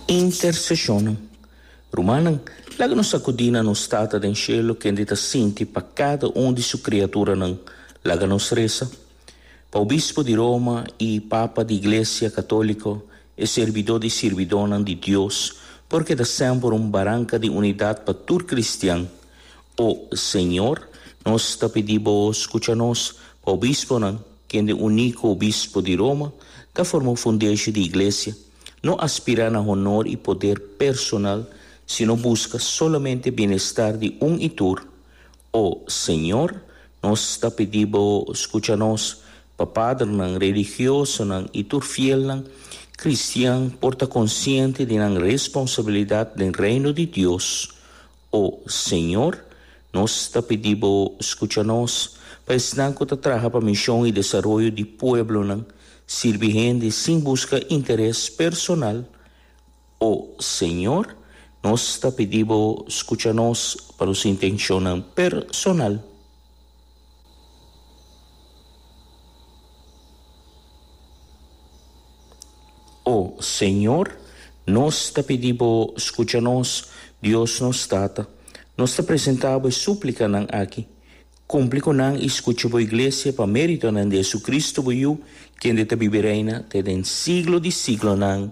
Intersesionnan. Rumannan, laga nos sakudí na nos Tata den shelu kende ta sinti pa kada un di su kriaturanan. Laga nos resa. Pa Obispo di Roma i Papa di Iglesia Katóliko, e sirbidó di sirbidónan di Dios, por keda semper un baranka di unidat pa tur kristian. O Señor, nos ta pidí Bo skucha nos. Pa obisponan. Kende uní ku obispo di Roma ta forma un fundeshi di iglesia, no a spirá na honor i poder personal, sino buska solamente bienestar di un i tur. O Señor, nos ta pidi Bo skucha nos, pa padrenan, religiosonan i tur fielnan kristian por ta konsiente di nan responsabilidat den Reino di Dios. O Señor, nos ta pidi Bo scucha nos, pa esnan cu ta traha pa mision y desaroyo di pueblonan, sirbi hende sin busca interes personal. O Señor, nos ta pidi Bo scucha nos pa nos intencion-nan personal. O Señor, nos ta pidi Bo scucha nos, Dios nos Tata. Nos ta presenta Bo e suplicanan aki. Cumpli cu nan y scucha Bo Iglesia pa meritonan di Jesucristo, Bo Yu, kende ta bibi reina te den siglo di siglonan.